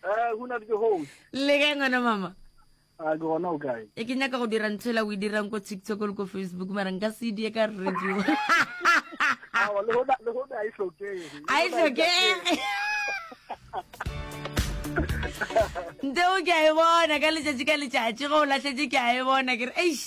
Eh, go na le ke hole. Le kae ngwana mama? A ke gona o kae? E ke nyaka go dira ntshela o e dirang ko TikTok le ko Facebook mara nka se die ka radio. Ah, le go le go a e hloke. A e hloke. Nteo ke a e bona ka letšatši ka letšatši go o lahletše ke a e bona ke re eish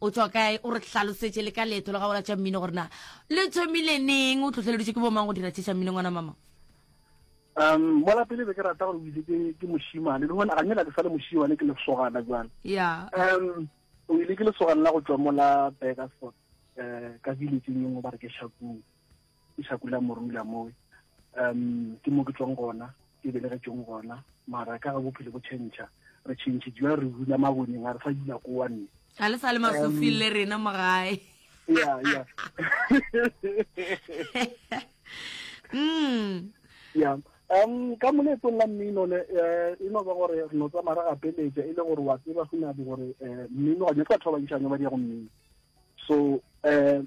O tšwa kae? O re hlalosetše le ka leeto la gago la tša mmino gore na le thomile neng, o tlhohleleditše ke bomang go dira tše tša mmino ngwana mama? Um, mola pele be ke rata gore o itse ke ke mošimane, le gona ga nyela ke sa le mošimane ke lesogana jwale. Yeah. Um, o ile ke lesogana la go tšwa mola Burgersfort, eh, ka village-eng e nngwe ba re ke Shakung. ke Shakula Morula mowe um ke mo ke tswang gona ke belegetšong gona mara ka ga bophelo bo tšhentšha re tšhentšhejwa re dula maboneng a re sa dula ko wa nne ga le sa le masofing le rena mo gae ya ya mm. ya um ka moletsong la mmino ne eh, e no ba gore re no tsamaya re gapeletša e le gore wa tseba go nabe gore um mmino gane batho ba bantšhane ba di ya go mmino so um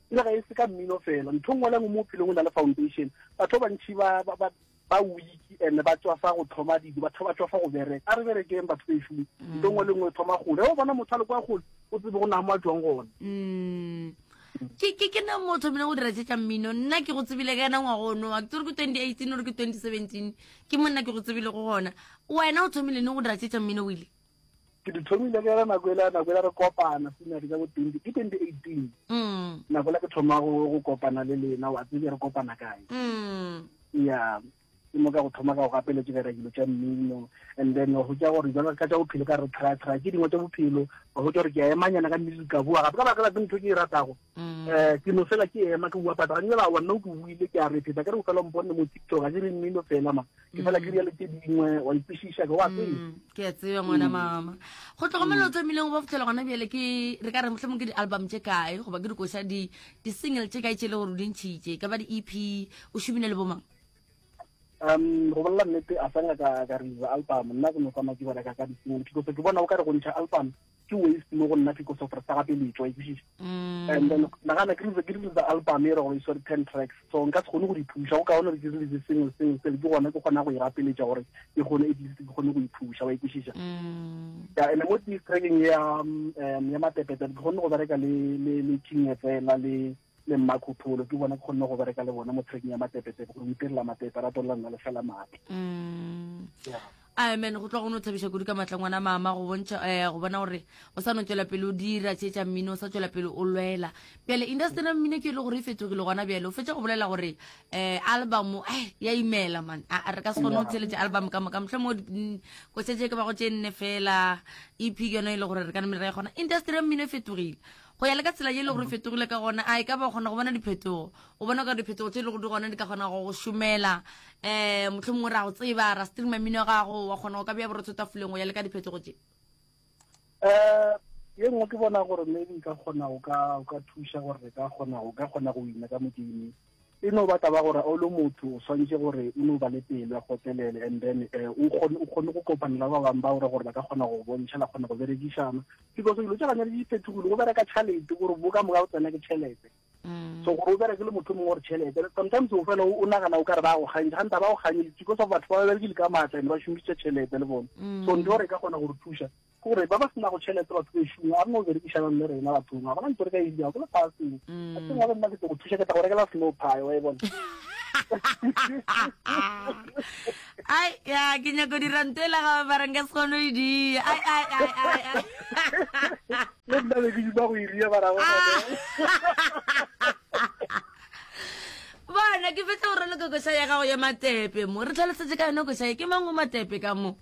E re ga e se ka mmino fela, ntho nngwe le nngwe mo bophelong o na le foundation. Batho ba bantši ba, ba, ba, ba weak and ba tswafa go thoma dilo, batho ba tswafa go bereka. A re berekeng batho bešo, mm. ntho nngwe le nngwe e thoma gole. O bona motho a le kwa gole, o tsebe go na mo a tswang gone. Mm. ke ke ke ne mo thomile go dira tšetša mmino nna ke go tsebile ka yena ngwago o nowa ke tsere ke twenty eighteen ore ke twenty seventeen ke mo nna ke go tsebile go gona wena o thomile ne go dira tšetša mmino o ile ke di thomile ke re nako ela nako ela re kopana sinadi ka bo twenty ke twenty eighteen mm. nako ela ke thoma go kopana le lena wa tsebe re kopana kae mm. ya ke mo ka go thoma ka go gapeletse ka dilo tša mmino and then go tša gore jalo ka tša bophelo ka re try try ke dingwe tša bophelo go tša gore ke a emanyana ka nnete ka bua gape ka baka la ke ntho ke e ratago Mm. Eh, ke no fela ke ema ke bua pata ga nyela wa nna o ke buile ke a re pheta ke re o fela mpone mo tiktok ga ke re mmino fela ma ke fela ke riale tse dingwe wa ikwešiša ke wa tsee mm, ke a tseba ngwana mm. mama go tlhokomela o tlamileng go ba fitlhela gona bjele ke re ka re motlhe mong ke di-album tše kae goba ke dikoša di-single tše kae tše e le gore o dintšhitše ka ba di-ep o šomine le bomang um go bolela nnete a sanga ka ka re album nna ke no tsamaya ke bereka ka disingle ke kotse ke bona o ka re go ntšha album ke waste mo go nna ke koso gore sa gape le etswa ikwešiša mm. and then nagana ke rile ke rile the album e re gore isware ten tracks so nka se kgone go di thuša go ka gona re ke rile single single sele ke gona ke kgona go e gapeletša gore ke kgone at least ke kgone go ithuša wa ikwešiša mm. ya ene mo trackeng ya um, ya matepetele ke kgone go bereka le le le king fela le le mmakhutholo ke bona ke kgonne go bereka le bona mo trekeng ya matepetepe gore o itirela matepe a ratolela nna le fela maatla mm. amen go tloga go ne o tlhabisa kudu ka matla ngwana mama go bontšha eh, go bona gore o sa no tswela pele o dira tsheetsa mmino o sa tswela pele o lwela pele industry ya mmino ke e le gore e fetogile gona bjale o fetsa go bolela gore um album eh, ya imela man a re ka se kgone go tsheletse album ka moka motlhe mo mm, ko setse ke ba go tse nne fela ep ke yone e le gore re ka nne re kgona industry ya mmino e fetogile go ya le ka tsela ye e le gore fetogile ka gona a e ka ba o kgona go bona diphetogo o bona ka diphetogo tse e le go di gona di ka kgona go go šomela um motlho mongwe ra go tseba ra stream mmino gago wa kgona go ka bea borotho tafoleng go ya le ka diphetogo tse um ye nngwe ke bona gore maybe ka kgona o ka thuša gore re ka kgona o ka kgona go ina ka modimo E no ba taba gore o le motho o swantše gore o no ba le pelo ya kgotlelele and then um o kgone o kgone go kopana le ba bang ba ore gore ba ka kgona go bontšha la kgona go berekišana because dilo tša gane le di fethogile go bereka tšhalete gore bo ka moka o tsena ke tšhelete Mm. so gore o bereke le motho mongwe gore tšhelete sometimes o fela o nagana o ka re ba go kgantse ganta ba go kgantse because of batho ba ba berekile ka maatla ene ba šomišitše tšhelete le bone so mm. ntho gore e ka kgona gore thuša Ke gore ba ba se nago tšhelete batho ba šumo a re no berekišanang le rena bathong a gona ntho re ka e dirago ke lefaseng a teng wa nna ke tlo go thuša ke tla go rekela snow pie wa e bona ai ya ke nyako dira nto e la gabe ba reng ka se kgone e dia ai ai ai ai le nna be ke duba go e ria ba rago bona ke fetla gore le kokoša ya gago ya matepe mo re tlhalosetse ka yone koša ye ke mango matepe ka mo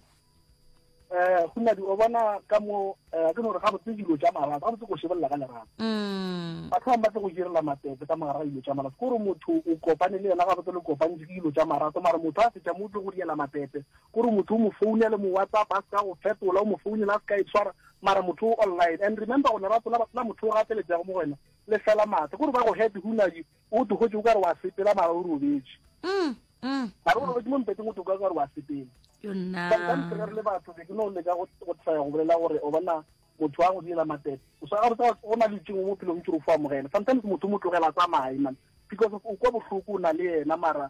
eh go nadi o bona ka mo eh, ke gore ga botse dilo tša marato ga botse go šebolela ka lerato mm. batho bangwe ba tle go direla matete ka mogara ga dilo tša marato kore motho o kopane le yena ga botse le kopantse ke dilo tša marato mara motho a fetša mo o tle go diela matete kore motho o mo founele mo whatsapp a se ka go fetola o mo founele a se ka e tshwara mara motho o online and remember go lerato la motho o gateletsego mo go wena le fela maatla kore ba go happy go nadi O togotše o ka re wa sepela mara o robetše. Mm, mm. Mara o robetše mo mpeteng o toka o ka re wa sepela. Yo nna. Ka nka ntle re le batho be ke no leka go go tsaya go bolela gore o bona motho wa go diela matete. O sa go tsa go na le tšengwe mo pelong ke re o fo amogela. Sometimes motho mo tlogela tsamaye man because of o kwa bohloko o na le yena mara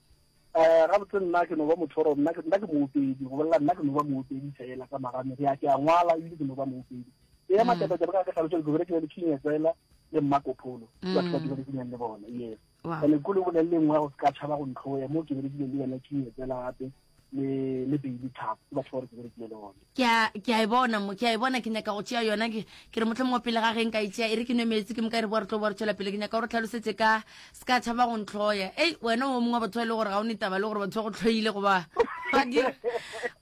Eh, gabotse nna ke no ba motho oro nna ke nna ke moopedi go bolela nna ke no ba moopedi fela ka magane ke a ke a ngwala ebile ke no ba moopedi e ya matata taba ka ke tlhalosa ke bere ke le king tsela le mmakopholo ba tla dira ke le bona yes ene go le bolele nngwe go ka tshaba go ntlhoya mo ke bere ke le yena king tsela gape le le beile thapo ke batho ba re ke berekile le one ke a ke a e bona mo ke a e bona ke nyaka go tšea yona ke ke re motlho mongwe pele ga ge nka e tšea e re ke nwe meetse ke moka e re boa re tlo boa re tšwela pele ke nyaka gore tlhalosetse ka se ka tšhaba go ntlhoya ei wena o mongwe wa batho ba e le gore ga o ne taba le gore batho ba go tlhoile goba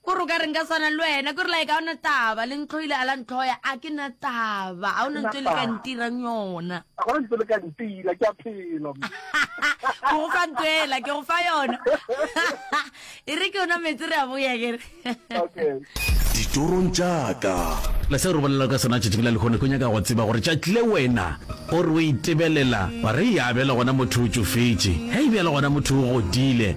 kore o ka re nka swana le wena kore lae ka ona taba le ntlhoile a la ntlhoya a ke na taba ga o na ntse le ka ntirang yona go fa ntwela ke go fa yona e re ke yona metse re a boya kere ditorong jaaka le se re bolela ka sona tšatši la lekgone ko nyaka go tseba gore tšatle wena o re o itebelela wa re e abela gona motho o tšofetše ge e bjale gona motho o godile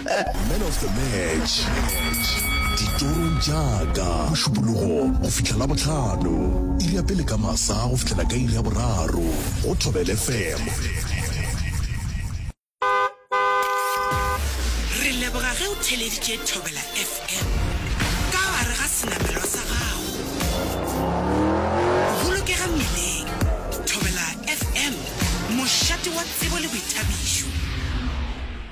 Man of the match, ditorong tša ka, Mošupologo go fihla Labohlano, iri ya pele ka masa go fihlela ka iri ya boraro, go Thobel FM. Re leboga ge o theleditše Thobela FM ka gare ga senamelwa sa gago. Bolokega mmileng. Thobela FM, mošate wa tsebo le boithabišo.